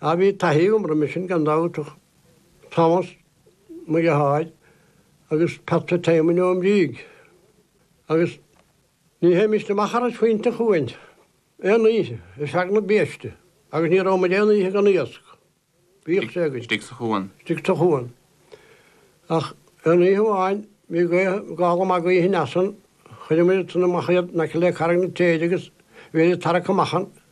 Ach bhí taithí agam roimhe sin gan dabht, Tomás Mac a' tSaoir agus Pat Fitzsimon ón Bhrígh agus ní théimist amach thar phointe an chuain aon oíche ar feadh na biaiste agus ní raibh muid aon oíche gan iasc. Bhíodh sé againn. Istigh sa chuan. Istigh sa chuan. Ach aon oíche amháin bhí gála maith gaoithe aneas ann, chuireadh muid ansin amach iad in aice le Carraig na Téide agus bhíodar ag tarrac amach an,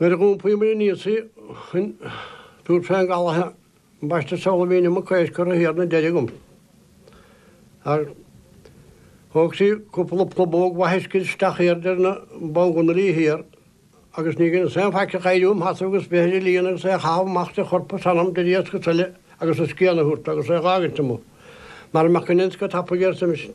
Nuair a dhúnfaimid an íosa chun dúirt Seán Gallagher, ambaiste seoladh mbíonn mo chois curtha thiar ina deireadh agamsa. Ach thóg sí cúpla plabóg mhaith uisce isteach aird ar na bánghunairí thiar agus ní dheineas aon faic ach éirí im sheasamh agus breith ar an líon agus é a chaitheamh amach idir chorp is anam idir iasc is eile agus a scian a thabhairt agus é a dh'fhágaint amuigh mara mbeadh an inscne tapaidh air sa mhisean.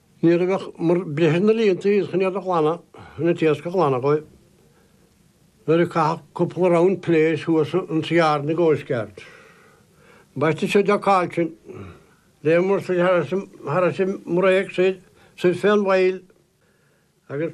Nuair a bheadh breith na líonta iad chun iad a ghlanadh in an t-iasc a ghlanadh dhóibh. Nuair a caitheadh cúpla round piléar thuas ins yard na gCoastguard. Ambaiste seo Jock Cailtin. Léimeadh said thar ais i mbreak said, said fé an bhfaill agus.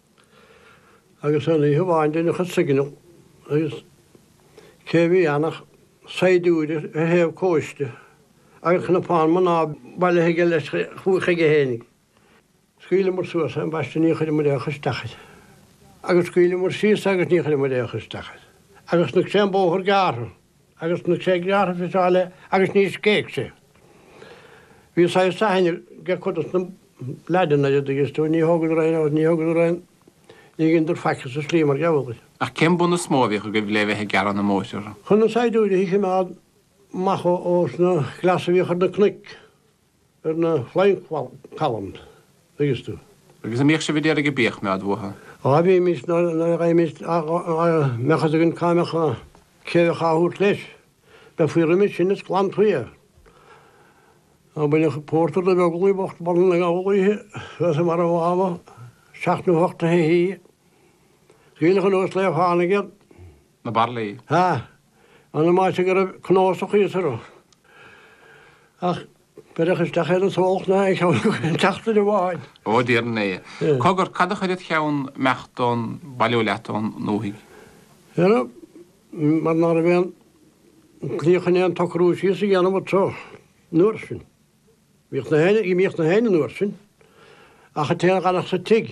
Agus aon oíche amháin deineadh an signal agus cé a bhí ann ach saighdiúir ar thaobh cóiste agus cnapán mná bailithe aige leis chuige féin. Scaoileamar suas é ambaiste ní chuireamar aon chur isteach air agus scaoileamar síos é agus ní chuireamar aon chur isteach air agus chonaic sé an bóthar gearrtha agus chonaic sé gearrtha is eile agus níor scéigh sé. Bhí saghas aithne air ag cuid dos na leaids an dtuigeann tú ní thógadar aon agus ní thógadar aon ní dheineadar faic as an slí mar gheall orthu. Ach cén bun is mó a bhíodh agaibh le bheith ag gearradh na mbóithre? Chun na saighdiúirí a chimeád amach ós na cleasaithe a bhíodh ar na cnoic. ar na Flying Columns, an dtuigeann tú. Agus a' mbíodh sibh a d'iarraidh bídh a bhaint uathu? Á bhímis, nuair a bheimis, dá mbeadh 'fhios againn cá mbeadh, cé a bheadh á thabhairt leis. Bheifí roimis sin is clann tuí é. Á baineadh pórtar de Bheaglaí bocht boladh na gabhal oíche thuas i mbarra an Mháma, seacht nó hocht a' hoíche. Is aoileach anuas lae a tháinig iad. na baraillí. Ha! Ambaiste go raibh cnuasach thíos orthu. Ach beireadh isteach é do sóch ná a cheann go aon tseachtain amháin. Ó, dar ndóigh. Cogar, cad a chuir id cheann imeacht nó bailiú leat ón ndúthaigh? Dhera, mar ná raibh aon tslí chun aon tsocrú síos a dhéanamh anso an uair sin. Bhíodh na héin, bhíodh na héin an uair sin, ach an té a dh'fhanadh sa tigh.